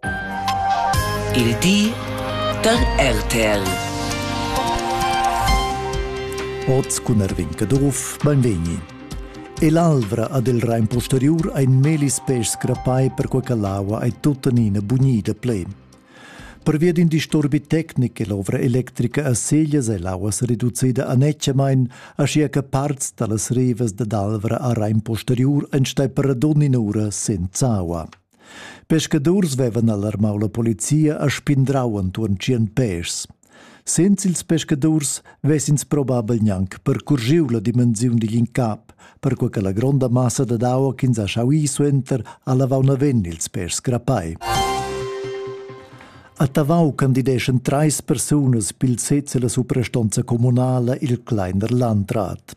Il di da RTL. Oz cun Erwin Caduff, beinvegni. E l'alvra ad il Rein posteriur ein melis pes crappai per quei che l'aua ei tuttenina bunida plen. Pervia d'in disturbi tecnic è l'ovra electrica a Seglias e l'aua reducida annetschamain, aschia che parts dallas rivas dad Alvra a Rein posteriur ein stai per ad ogni ura senza aua. Pescadurs vevan alarmau la polizia e spindrau entuorn tschien pèschs. Senza ils pescadurs vessins probabel gnanc percurgiu la dimensiun digl incap, perquei che la gronda massa dad aua ch'ins ha schau ir suenter ha lavau naven ils pèschs grapai. A Tavau candideschan treis persunas pil sez e la suprastonza communala il Kleiner Landrat.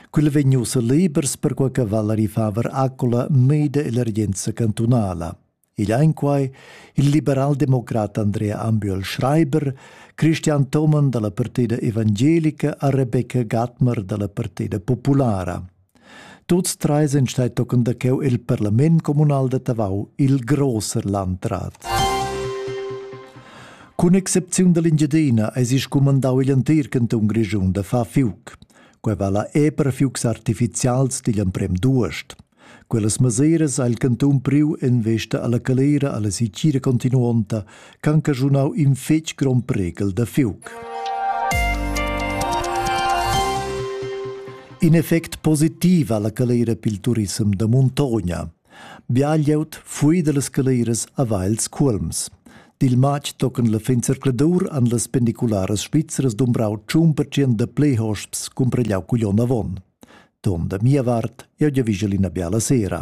Quel vegn ussa libers perquai che Valerie Faber accola meida l'emergenza cantunala. Igl ein quai il liberaldemocrat Andrea Ambiol Schreiber, Christian Thomann dalla Partida Evangelica a Rebecca Gatmer dalla Partida Populara. Tuts tre sind stai tochen da cheu il parlament communal da Tavau, il grosser landrat. Cun excepziun dall'Engiadina eis il scumandau igl entir cantun Grischun da far fiuc. Quei vala era per fiugs artificials digl emprem d'uost. Quellas mesiras ha il cantun priu en vesta alla calera alla sicira continuonta ch'han caschunau in fetg grond priegel da fiug. In effect positiv alla calera pil turisem da muntogna. Bia glieud fui dallas scaleras haveva els cuolms. Dil matg tocan la fin zercladur han las pendicularas svizzeras dumbrau tschun pertschient da pli hosps cumpregliau cugl onn avon. Ton da mia vart, jeu giavischel ina biala sera.